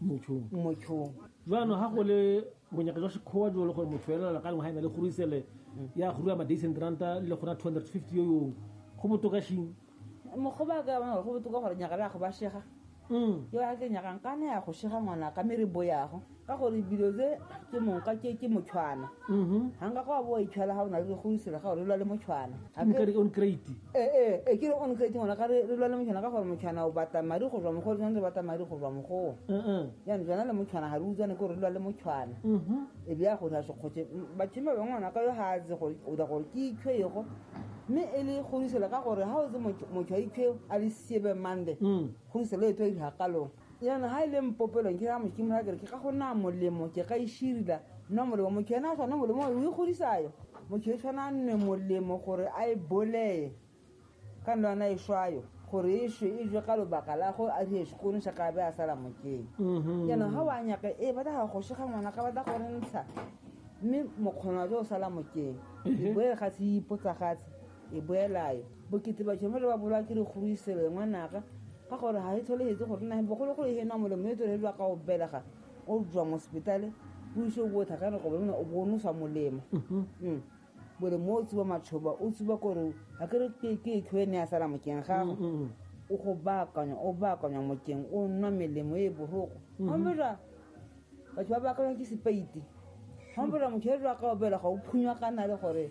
motšhong motšhong jaanong ga go le bonyaka jwa sekgowa jo le gore motho elela ka lengwe ga e na le gorisele ya go rua madays and ranta le gona two hundred fifty yo yong go botokashing mogoba ka bana go botoka gore nyaka la go ba shega mm. yo a ke nyakang ka ne ya go shega ngwana ka mere bo yago ka gore dilo tse ke moka ke ke motshwana mm-hmm. ga nka go a bo itshwela ga o na le go isela ga o le lwa le motshwana on crate ee e ke re on crate ngwana ka re re lwa le motshwana ka gore motshwana o batla madi go tswa mogo tshwanetse batla madi go tswa mogoa jaanong jana le motshwana ga re utswane ko re lwa le motshwana e be ya go sa sekgotshe batho ba bangwe ngwana ka yo ga a tse gore o da gore ke itshwe ego mme e le kgodiselo ka gore ga o tse motho a itshwe a le siebe mande kgodiselo e tlo e digakalong yana ha ile mpopelong ke amo ke mora ke ka go na molemo ke ga ishirila no molemo mo ke na sona molemo o ikgodisayo mo ke tshwana nne molemo gore a e boleye ka nna na ishwayo gore ishwe izwe ka lobaka la go a di sekone sa ka be a sala mo ke yana ha wa nyaka e ba da go shega ngwana ka ba da go ntsha mme mokgona jo sala mo ke bo ga se ipotsa gatse e boelayo bokete ba tšhomo le ba bolwa ke dikgorwiselo e ngwanaka ka gore ga e tsholehetse gore nageng bogologolo e hena molemo e tswelelwa ka go belega o jwa mo sepetale o ise o botha ka nako bone o bonosa molemo Mm. molemo o tsuba matšhoba o tsuba kore ga ke re ke- ke ekhwe ne a sala mokeng gago o go baakanya o baakanya mokeng o nwa melemo e boroko gambela batho ba baakanya ke sepeiti gambela motho e jwa ka obela ga o phunywa kana le gore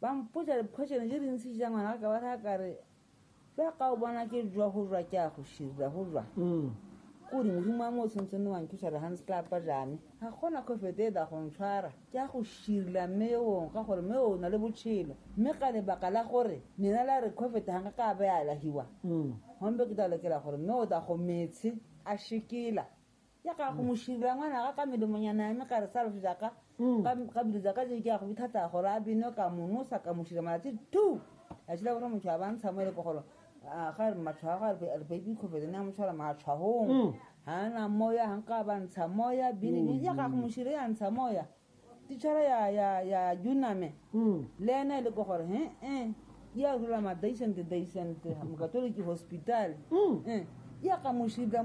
ba mpotsa diphotsene tse dintsi ja ngwana ka ba raya kare jaaka o bona ke jwa go jwa ke a go shirira go jwa ko modimo wa mo o tshwantseng ne wanthusa re gantse tla pa jane ga gona kgofete e da go ntshwara ke a go shirila mme ewong ka gore mme o na le botshelo mme ka lebaka la gore lena la re kgofete ga nka ka be a lahiwa gombe ke tla lokela gore mme o da go metshe a shikela ya ka go moshilo ya ngwana ga ka medomonyana ya me ka re sa loso jaka ka bilo jaka je ke ya go bithata gore a bino ka monosa ka moshilo malatsi two a tshila gore motho a bantsha mo e le pogolo ga re matshwa a go a re baby kgofetse ne a motshwara matshwagong ga na moya ga nka ba ntsha moya bini ya ga go moshilo ya ntsha moya titšhara ya ya ya juname le ena e le ko gore he e ya rula ma daisente daisente mokatoliki hospital e ya ka moshilo